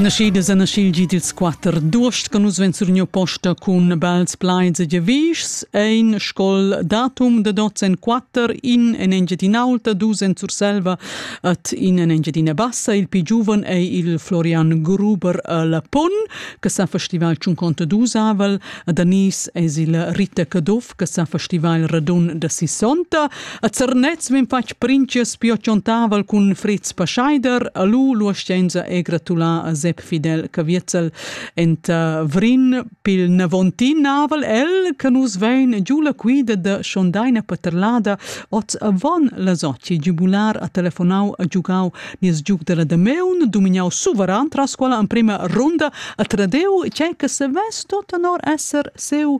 Naschidas a naschil gid ils quatter d'uost con nus ven surgniu posta cun bels plaids e gevischs ein scol datum de dots en quatter in en Engiadin'Aulta dus en Surselva et in en Engiadina Bassa il pi giuven ei il Florian Gruber la Pun che sa festival 52 avel a Danis es il Rita Caduff che sa festiva il radun da sissonta. A Zernez vin fatg princes pio ciontaval cun Fritz Pascheider, a lu l'uascenza e gratulà a Sepp Fidel Caviezel enta Vrin pil Navontin naval el che nus vein giu la quida da Schondaina Paterlada oz avon la soci giubular a telefonau a giugau nies giug della Dameun dumignau suveran tras quella emprima runda a Tradeu, cei che se vess tot honor esser seu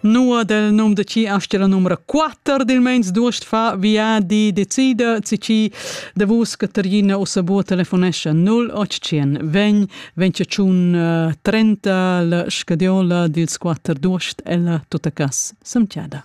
Nua del num de ci asti la numra 4 dil meins duost fa viadi decida si ci de vus Caterina o sabo telefonescha 0800 ven venciun 30 la scadiola dils quatter duost ella tutta cas semtiada.